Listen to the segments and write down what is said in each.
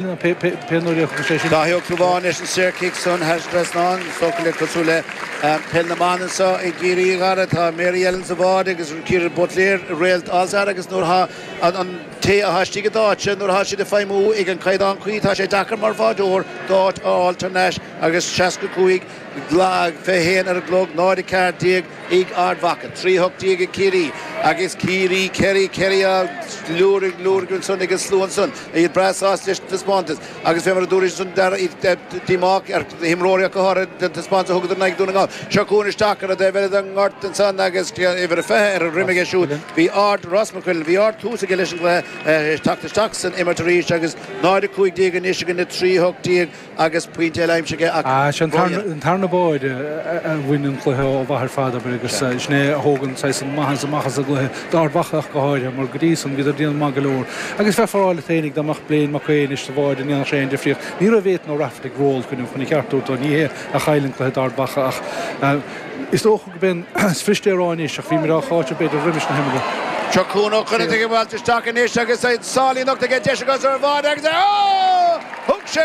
pé nuair a thiocfadh sé sin. Daithí Ó Clúmháin leis an saorchic san thar an trasnán. Is dócha cosúil le peil na mban anseo i gCiarraí a Dhara. Tá Mary Ellen sa bháide agus Ciara Butler, réalt All Star agus nuair atá an té atá istigh i d'áitse, nuair atá siad ag feidhmiú ag an caighdeán cuí, tá sé deacair mar bháideoir d'áit a fháil thar n-ais agus seasca cúig, fiche haon ar an gclog, náid a ceathair déag, ag Ard Mhacha, trí hocht déag ag Ciarraí agus Ciarraí, Kerry, Kerry á lorg, lorg ansan agus a slua ansan, iad breá sásta leis an taispeántas agus bhí, mar a dúradh ansan, an-tarraingt díomá acu, ar imreoirí acu tar éis an taispeántas a thugadar in aghaidh Dhún na nGall. Seo cuan isteach ar an taobh eile den ghort ansan agus uimhir a fiche ar a dhroim aige siúd, bhí ard, Ross McQuillan, bhí ard-thús aige leis an gcluiche ag teacht isteach san imirt arís agus náid a cúig déag anois ag Ard Mhacha, trí hocht déag. agus pointe eile aimsithe aige. An tarna báire a bhain an cluiche ó mhaith ar fad, abair, agus sin é a thóg an saghas maitheas amach as an gcluiche, d'Ard Mhacha ach go háirithe, mar go dtí san bhíodar déanamh maith go leor. Agus bheifeá a rá leat fhéinig dá mbeadh Blaine Mac Aoidh anois sa bháide an ndéanfadh sé aon difríocht? Ní raibh Ethan Ó Raifeartaigh ró-chruinn chun a cheart a thabhairt dó, ó ní hé a chaill an cluiche d'Ard Mhacha ach is dócha, B'in is bhriste ar fháil anois, ach bhí muid á cháiteamh b'fhéidir roimis na himeallaí. Seo Cuan Ó Conaire ag eitilt isteach anois agus a sálaí nochta aige, deis aige sara fada agus é á thug sé!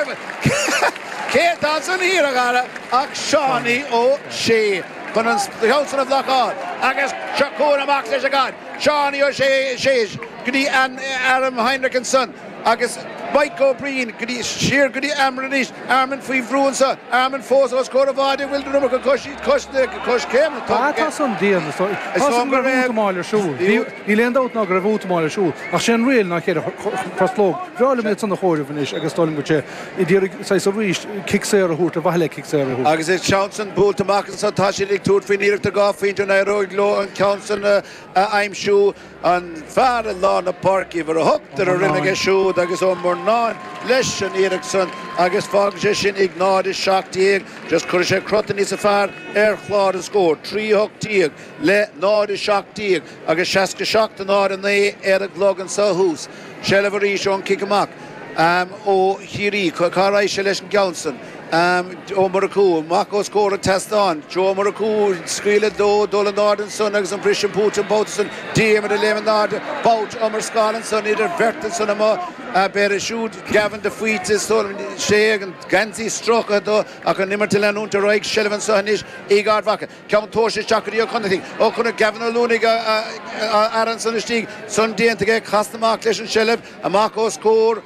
Cé atá ansan thiar, a chara, ach Seánaí Ó Sé chun an ceann san a bhlocáil agus seo Cuan amach leis an gcaid, Seánaí Ó Sé, séis go dtí airm Heinrich ansan. Agus Mike Ó Briain, siar go dtí Eamon anois, Eamon faoi bhrú anseo, Eamon fós os comhair an bháide an bhfuil an iomarca coiscéimeanna tugtha aige. Tá san dian, is dóigh liom go raibh útamáil ar siúl, níl aon dabht ná go raibh útamáil ar siúl, ach sé an riail ná ceithre choslóg. Bhreá liom iad san a chomhaireamh anois agus is dóigh liom go raibh sé ag iarraidh saghas arís cic saor a thabhairt, ar mhaithe le cic saor a thabhairt. Agus an ceann san buailte amach anseo, tá siad ag tabhairt faoin iarracht dhá phointe a n-éireoidh leo an ceann san a aimsiú. An Fear i Lár na Páirce, Uimhir a hocht, ar a dhroim aige siúd agus Ó Murnáin leis an iarracht san agus fágann sé sin ag 0, 17. Just cuirfidh sé crot níos fearr ar chlár an scóir, 3, 18 le 0, 17 agus 67 náid a 9 ar an gclog anso thuas. Seilbh arís ón cic amach ó Chiarraí. Cá raghadh sé leis an gceann san? Joe Murchú amach os comhair an tseastáin. Joe Murchú, scaoileadh dó dul in airde ansan agus an briseadh fúthu an babhta san. Diarmuid ag léim in airde. Babhta iomrascála ansan idir bheirt ansan amuigh an fear é siúd. Gavin de Faoite is dóigh liom. Sea agus an geansaí stróicthe dó ach an imirt ag leanúint ar aghaidh. Seilbh anso anois ag Ard Mhacha. Ceann tomhaiste isteach go dtí Ó Conaire. ó chonaic an cúinne lántosaí an fear ansan istigh, san déanta aige, casann amach leis an tseilbh, amach os comhair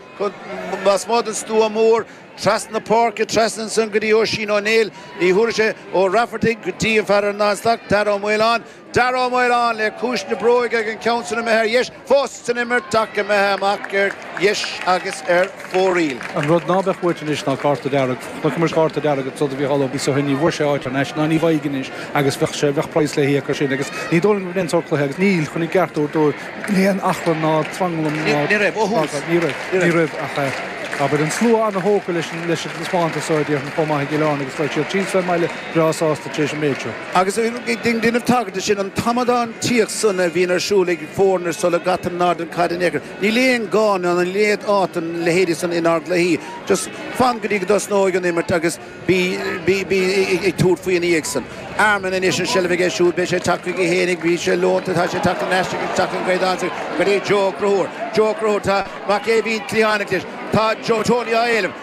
lasmuigh den stua mór, trasna na páirce, trasna ansan go dtí Oisín Ó Néill, ní thabharfaidh sé, Ó Raifeartaigh go dtí an fear ar an dtarna stac, Darragh Ó Maoláin. Darragh Ó Maoláin le ciumhais na bróige agus an ceann san imithe ar dheis. Fós san imirt ach imithe amach ar dheis agus ar fóraoil. An rud ná beadh uait anois ná cárta dearg. Chonaiceamar cárta dearg ag Trodaí Mhicheál Ó Biosa ó shin, ní bhfuair sé áit thar n-ais, ná ní bhfaighidh anois agus bheadh sé, bheadh praghas le híoc as sin agus ní dóigh liom go raibh aon tsórt cluiche agus níl, chun a gceart a thabhairt dóibh, níl aon achrann ná tranglam ná Ní raibh, ó thús. fadhb, ní raibh, ní raibh ach eh abair an slua an-thógtha leis an, leis an taispeántas so a déarfainn chomh maith i gCill Airne agus beidh siad síos fén mbaile breá sásta tar éis an méid seo. Agus ag déanamh tagairt do sin, an t-amadántaíocht san a bhíonn ar siúl ag foirne sula gcaitear in airde an chaid in aon chor, níl aon ghá ná níl aon áit don leithéidí san inár gcluichí. Just fan go dtí go dtosnóidh an imirt agus bí ag tabhairt faoi ina dhiaidh san. Armin anois an seilbh aige siúd, beidh sé tagtha chuige féinig, bhí sé leonta, tá sé tagtha ar ais, tugtha aige ansin go dtí Joe Ó Conchúir. Joe Ó Conchúir, tá mac Éimhín cliathánach leis, tá Tony á éileamh.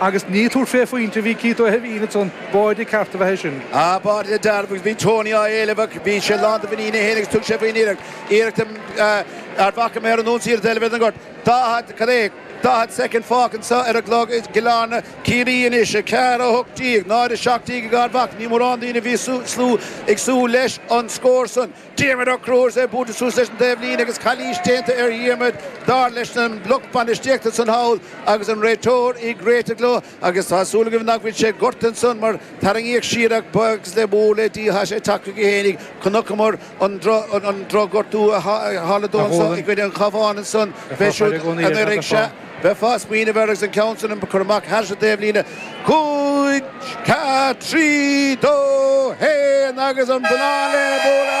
Agus ag tabhairt fé phointe a bhí Keith Ó hÉimhín ansan, pointe ceart ab ea é sin. Ab ea go dearfa agus bhí Tony á éileamh ach bhí sé lán de mhuinín é fhéin agus thug sé faoin iarracht, iarracht Ard Mhacha amach ar an ionsaí ar an dtaobh eile den ngort. Daichead, cad é, daichead soicind fágtha anseo ar an gclog i gCill-Airne, Ciarraí anois, a ceathair a hocht déag, náid a seacht déag ag Ard Mhacha, ní mórán daoine a bhí ag súil leis an scór san. Diarmaid Ó Conchúir ag bualadh suas leis an taobh líne agus calaois déanta ar Dhiarmaid dar leis an lucht bainistíochta san thall agus an réiteoir ag réiteach leo agus tá súil agam nach bhfuil sé gortaithe ansan mar tarraingíodh siar ach buíochas mór le Dia tá sé tagtha chuige fhéinig chonaiceamar an an drochghortú a tharla dó anso i gcoinne an Chabháin ansan b'é siúd anuiridh sea bheifeá ag smaoineamh air agus an ceann san curtha amach thar an taobh líne cúig, ceathair, trí, dó, haon agus an bonnán le bualadh!